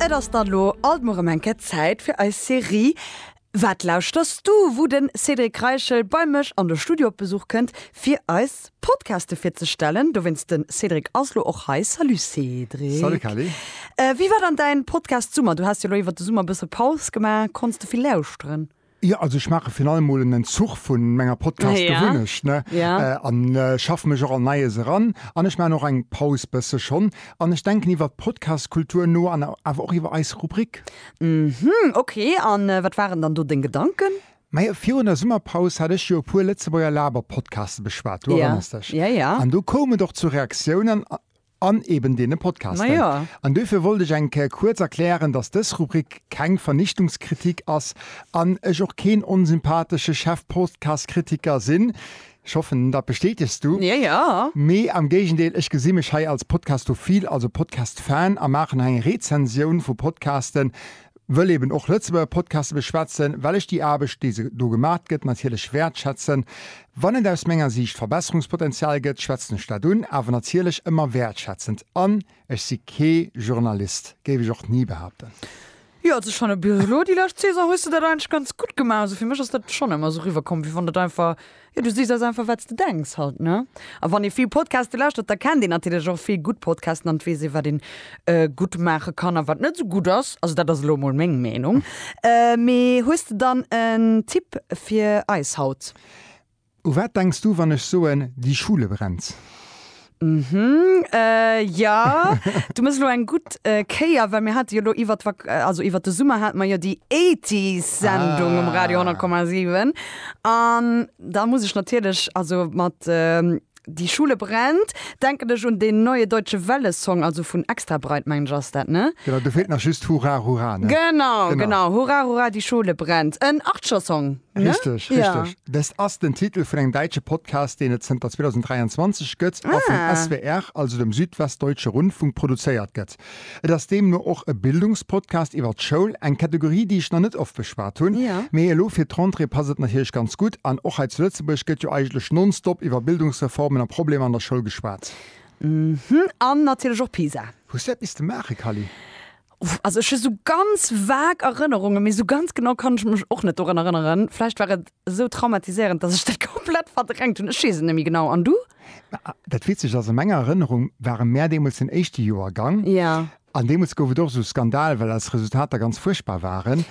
Et ass dann elo alt mol rem eng Kéier Zäit fir eis Serie Wat lauschters du? wou den Cédric Reichel bei mech an de Studio op Besuch kënnt fir eis Podcaste virzestellen. Dowéinst den Cédric ass elo och hei. Salut Cédric. Salut Kelly. Wéi war dann däin Podcast Summer? Du haas jo elo iwwert de Summer e bësse Paus gemaach. Konns de vill lauschteren? Jo, also ech maache virun allem mol en Entzuch vu menger Podcast-Gewunnecht, ne? An schaffe mech och an Neies eran. An ech maachen och eng Paus, bësse schonn. An ech denken iwwer d'Podcast-Kultur no an awer och iwwer eis Rubrik. Hm, ok. A wat waren dann do deng Gedanken? Majo, virun der Summerpaus hat ech jo e puer Lëtzebuerger Laber-Podcaste beschwat, du erënners dech? An do koum et och zu Reaktiounen. An eben deene Podcasten. Majo. An duerfir wollt ech eng Kéier kuerz erklären, dass dës Rubrik keng Vernichtungskritik ass an ech och keen onsympathesche Chefpodcastkritiker sinn, ech hoffen, dat bestätegs du, Ja, ja. mee am Géigendeel, ech gesi mech hei als podcastophil, also Podcast-Fan, a maachen hei eng Rezensioun vu Podcasten, wëll eben och Lëtzebuerger Podcaste beschwätzen, well ech déi Aarbecht, déi do gemaacht gëtt, natierlech wäertschätzen. Wann et aus menger Siicht Verbesserungspotenzial gëtt, schwätzen ech dat un, awer natierlech ëmmer wäertschätzend. An ech si kee Journalist, géif ech och ni behaapten. Jo, also schon e bis elo déi lescht Saison hues de dat eigentlech ganz gutt gemaach. Also fir mech ass dat schon ëmmer esou riwwer komm, wéi wann et einfach. Jo, du sichs ass einfach wat s de denks halt, ne? A wann ee vill Podcaste lauschtert, da kennt een natierlech och vill gutt Podcasten an et weess ee wat een gutt maache kann a wat net esou gutt ass. Also dat ass elo emol meng Meenung. Mee hues de dann en Tipp fir eis haut? U wat denks du wann ech soen, Die Schule brennt? Mhm, äh, jo, du muss elo eng gutt äh, Kéier, well mir hate jo elo iwwer d'Vak-, äh, also iwwer de Summer hate mer jo déi 80s-Sendung um Radio Ah. 100,7. An da muss ech natierlech, also mat ähm, Die Schule brennt, denken ech un deen Neue Deutsche Welle-Song, also vun Extra Breit, mengen ech, ass dat, ne? Genau, do feelt nach just Hurra, Hurra, ne? Genau, Genau. genau, Hurra, Hurra, die Schule brennt. En Archer-Song. Richteg, richteg. Dest ass den Titel vun engem däitsche Podcast, deen et zënter 2023 gëtt a vum SWR, also dem Südwestdeutsche Rundfunk, produzéiert gëtt. Et ass deemno och e Bildungspodcast iwwer d'Schoul, eng Kategorie, déi ech nach net oft beschwat hunn, mee elo fir d'Rentrée passt et natierlech ganz gutt. An och hei zu Lëtzebuerg gëtt jo eigentlech nonstop iwwer Bildungsreformen a Problemer an der Schoul geschwat. An natierlech och Pisa. Hues du eppes ze maachen, Kally? Also ech hu sou ganz vague Erënnerungen, mee sou ganz genau kann ech mech och net dorun erënneren. Vläicht war et sou traumatiséierend, dass ech dat komplett verdrängt hunn. Ech weess et net méi genau. An du? Dat Witzegt ass, a menger Erënnerung ware mär deemools den éischte Joergang. Jo. An deemools gouf et och esou Skandal, well eis Resultater ganz fuerchtbar waren.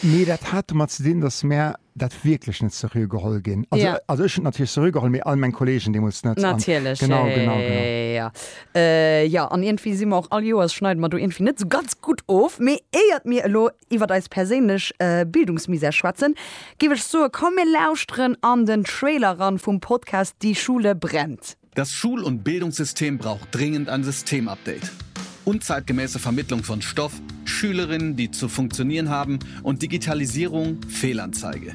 Mee dat hat domat ze dinn, dass mär dat wierklech net seriö geholl ginn. Also ech hunn et natierlech seriö geholl, mee all meng Kolleegen deemools net. Natierlech, jo. Jo, an iergendwéi si mer och, all Joers schneide mer do iergendwéi net esou ganz gutt of. Mee éiert mir elo iwwert eis perséinlech Bildungsmisär schwätzen, géif ech soen, komm mir lauschteren an den Trailer eran vum Podcast Die Schule brennt. Das Schul und Bildungssystem braucht dringend ein Systemupdate. Unzeitgemäße Vermittlung von Stoff, Schülerinnen, die zu funktionieren haben, und Digitalisierung, Fehlanzeige.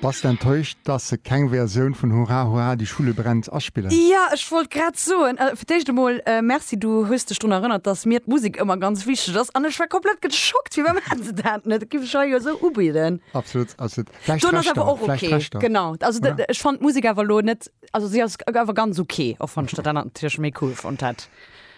Bass de enttäuscht dass se keng Versioun vun Hurra Hurra die Schule brennt aspillen? Jo, ech wollt grad soen, fir d'éischt emol Merci, du hues dech drun erënnert, dass mir d'Musek ëmmer ganz wichteg ass an ech war komplett geschockt, firwat maachen se dat net? Et gi sech hei jo esou ubidden. Absolut, absolut. Vläicht D'Ton ass Rechter, awer och vläicht okay, Rechter, genau. Also oder? ech fannt d'Musek awer elo net, also si ass awer ganz okay, och wann ech dat anert natierlech méi cool fonnt hätt.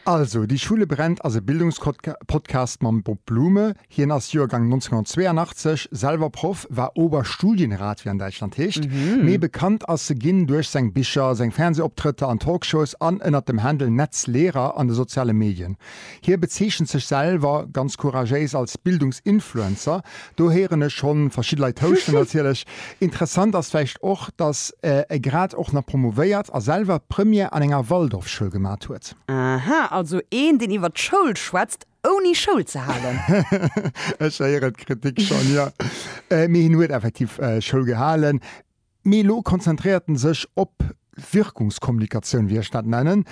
Also, Die Schule brennt ass e Bildungspodcast mam Bob Blume, Hien ass Joergang 1982, selwer Proff, war Oberstudienrat, wéi an Däitschland heescht. Méi bekannt ass e ginn duerch seng Bicher, seng Fernsehoptrëtter an Talkshows an ënnert dem Handle Netzlehrer an de soziale Medien. Hie bezeechent sech selwer ganz couragéis als Bildungsinfluencer. Do héieren ech schonn verschidde Leit houschten natierlech. Interessant ass vläicht och, dass e grad och nach promovéiert a selwer d'Première an enger Waldorfschoul gemat huet. Aha, also een, deen iwwert d'Schoul schwätzt, Ouni Schoul ze halen. Ech héieren d'Kritik schonn, jo. Mee hien huet effektiv Schoul gehalen. Mee elo konzentréiert en sech op Wirkungskommunikatioun, wéi ech dat nennen.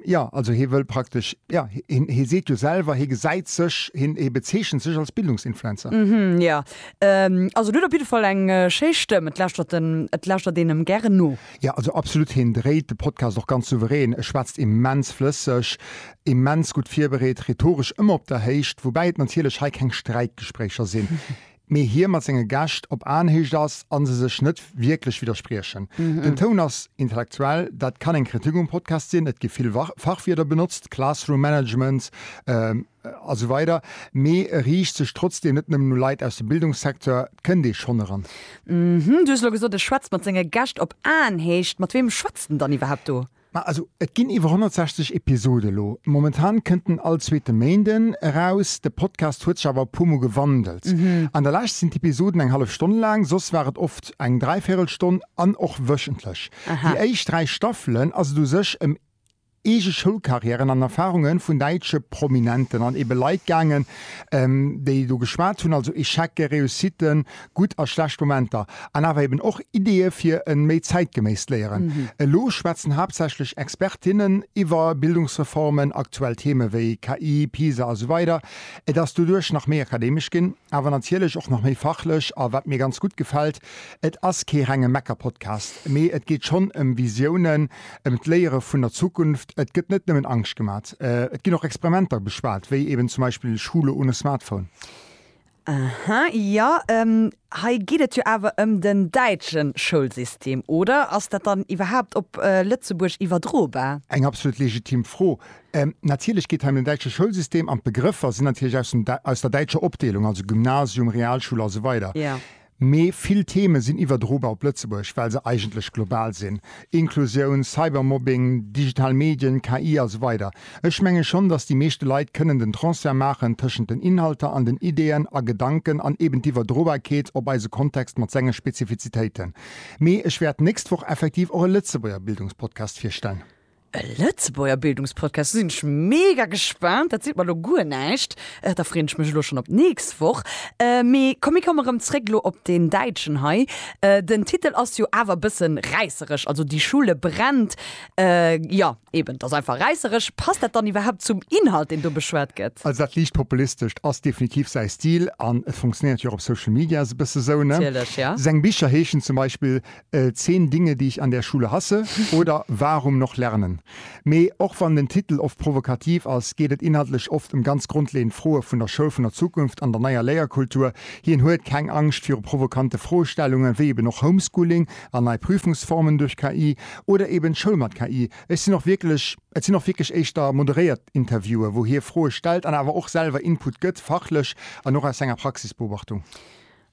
Jo, also hie wëll praktesch, jo, hie seet jo selwer, hie gesäit sech, hie bezeechent sech als Bildungsinfluencer. Hm, jo. Also en huet op jidde Fall eng schéi Stëmm. Et lauschtert en, et lauschtert een em gären no. Jo, also absolut. Hien dréit de Podcast och ganz souverän, e schwätzt immens flësseg. Immens gutt virbereet, rhetoresch ëmmer op der Héicht, woubäi et natierlech hei keng Sträitgespréicher sinn, mee hie mat senge Gäscht op Aenhéicht ass a se sech net wierklech widderspriechen. Den Toun ass intellektuell, dat kann eng Kritik um Podcast sinn, et gi vill Fachwierder benotzt, Classroom Management a sou weider, mee e riicht sech trotzdeem net nëmmen u Leit aus dem Bildungssecteur, et kënnt ee schonn eran. Du hues elo gesot, e schwätzt mat senge Gäscht op Aenhéicht, mat weem schwätzt en dann iwwerhaapt do? Ma also et ginn iwwer 160 Episode lo. Momentan kënnt en all zweete Méinden eraus. De Podcast huet sech awer e puermol gewandelt. An der lescht sinn d'Episoden eng hallef Stonn laang, soss war et oft eng dräivierel Stonn an och wöchentlech. Déi éischt dräi Staffelen ass et u sech ëm eege Schoulkarriären an Erfarunge vun däitsche Prominenten an ebe Leit gaangen, déi do geschwat hunn, also Echecke, Réussitten, gutt a schlecht Momenter, an awer eben och Ideeë fir e méi zäitgeméisst Léieren. Elo schwätzen haaptsächlech Expertinnen iwwer Bildungsreformen, aktuell Theeme wéi KI, PISA a sou weider. Et ass doduerch nach méi akademesch ginn, awer natierlech och nach méi fachlech. A wat mir ganz gutt gefält, et ass kee renge Mecker-Podcast, mee et geet schonn ëm Visiounen, ëm d'Léiere vun der Zukunft. Et gëtt net nëmmen Angscht gemat, et ginn och Experimenter beschwat, wéi eben zum Beispill Schule ohne Smartphone. Aha, jo, hei geet et jo awer ëm den däitsche Schoulsystem, oder? Ass dat dann iwwerhaapt op Lëtzebuerg iwwerdrobar? Eng absolut legitim Fro. Natierlech geet hei ëm den däitsche Schoulsystem an d'Begrëffer sinn natierlech aus der däitscher Opdeelung, also Gymnasium, Realschule a sou weider. Mee vill Theme sinn iwwerdrobar op Lëtzebuerg, well se eigentlech global sinn, Inklusioun, Cybermobbing, digital Medien, KI a sou weider. Ech menge schonn, datt déi meeschte Leit kënnen den Transfert maachen tëschent den Inhalter an den Ideeën a Gedanken an eben d'Iwwerdrobarkeet op eise Kontext mat senge Spezifizitéiten. Mee ech wäert d'nächst Woch effektiv och e Lëtzebuerger Bildungspodcast virstellen. E Lëtzebuerger Bildungspodcast, do sinn ech mega gespaant. Dat seet mer elo guer näischt. Da freeën ech mech elo schonn op d'nächst Woch. Mee komm, mir komme rëm zréck elo op deen däitschen hei. Den Titel ass jo awer e bësse räisseresch, also Die Schule brennt. Jo, eben, dat ass einfach räisseresch. Passt dat dann iwwerhaapt zum Inhalt, deen do beschwat gëtt? Also dat liicht Populistescht ass definitiv säi Stil an et funktionéiert jo och op Social Media sou e bësse sou, ne? Natierlech, jo. Seng Bicher heeschen zum Beispill Zehn Dinge, die ich an der Schule hasse oder Warum noch lernen? Mee och wann den Titel oft provokativ ass, geet et inhaltlech oft ëm ganz grondleeënd Froe vun der Schoul vun der Zukunft an der neier Léierkultur. Hien huet keng Angscht viru provokante Froestellungen, wéi eben och Homeschooling an nei Prüfungsformen duerch KI oder eben d'Schoul mat KI. Et sinn och wierklech éischter moderéiert Interviewen, wou hie Froe stellt an awer och selwer Input gëtt, fachlech an och aus senger Praxisbeobachtung.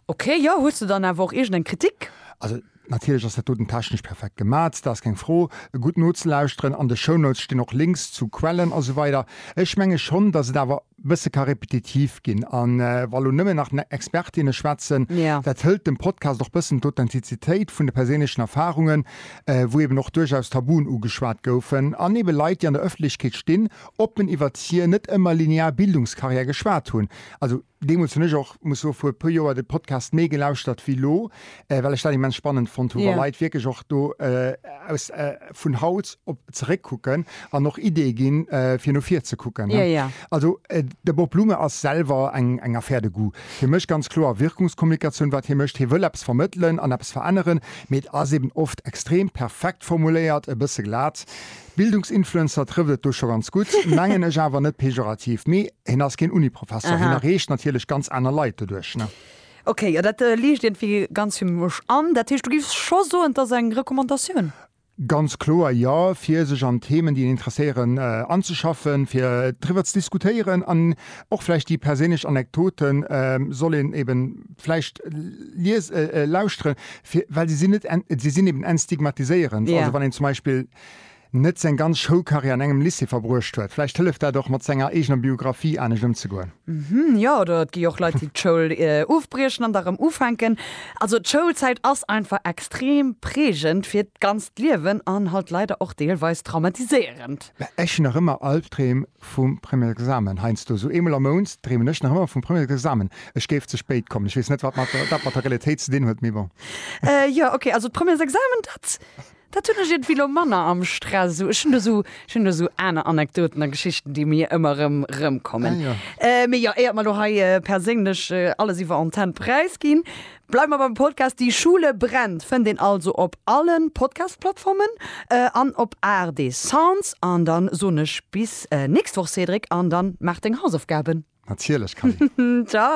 Ok, jo, hues de dann awer och iergend eng Kritik? Also natierlech ass dat doten technesch perfekt gemaazt, da ass keng Fro. Gutt nozelauschteren, an de Shownotes stinn och Links zu Quellen a sou weider. Ech menge schonn, datt et awer e bësse ka repetitiv ginn a wa lo nëmmen nach Expertinne schwätzen, dat hëlt dem Podcast och bëssen d'Authentizitéit vun de perséinlechen Erfarungen, wou eben och duerchaus Tabuen ugeschwat goufen an ebe Leit, déi an der Ëffentlechkeet stinn, oppen iwwert hir net ëmmer linear Bildungskarriär geschwat hunn. Also. Deemools hunn ech och, muss soen, vu e puer Joer de Podcast méi gelauschtert wéi elo, well ech dat immens spannend fonnt hu wa Leit wierklech och do aus vun haut op zeréckkucken an och Ideeë ginn, fir no vir ze kucken. Also de Bob Blume ass selwer eng Affaire de goût. Hie mécht ganz kloer Wirkungskommunikatioun, wat hie mécht. Hie wëll eppes vermëttelen an eppes veränneren, mee et ass eben oft extrem perfekt formuléiert, e bësse glat. Bildungsinfluencer trëfft et do scho ganz gutt, mengen ech awer net pejorativ. Mee hien ass keen Uniprofessor, hien erreecht natierlech ganz aner Leit doduerch. Ok, jo dat liicht iergendwéi ganz fir mech an. Dat heescht du giffs scho soen, et ass eng Recommandatioun? Ganz kloer jo, fir sech an Themen déi een interesséieren anzeschaffen, fir driwwer ze diskutéieren an och vläicht déi perséinlech Anekdote soll een eben vläicht lies, lauschteren, fir well se sinn net, se sinn eben entstigmatiséierend. Also wann een zum Beispill. net seng ganz Schoulcarrière an engem Lycée verbruecht huet. Vläicht hëlleft dat och, mat senger eegener Biographie anescht ëmzegoen. Mhm, jo, oder et gi jo och Leit, déi d'Schoul ofbriechen an da erëm ufänken. Also d'Schoulzäit ass einfach extrem prägend fir d'ganzt Liewen an halt leider och deelweis traumatiséierend. Ech hunn nach ëmmer Albdreem vum Premier Examen heiansdo. Sou eemol am Mount dreemen ech nach ëmmer vum Premier Examen, ech géif ze spéit kommen. Ech weess net, wat dat mat der Realitéit ze dinn huet, mee bon. Jo, okay, also Premier Examen, dat. Dat hunn ech iergendwéi lo manner am Stress. Ech hunn do sou, ech hunn do sou aner Anekdoten a Geschichten, déi mir ëmmer erëm erëmkommen. Ah ja. Mee jo, éiert mer lo hei perséinlech alles iwwer Antenn präisginn, bleiwe mer beim Podcast. Die Schule brennt fënnt een also op alle Podcast-Plattformen an op ARD Sounds. An da soen ech bis nächst Woch, Cédric, an da maach deng Hausaufgaben. Natierlech, Camille. Tschau.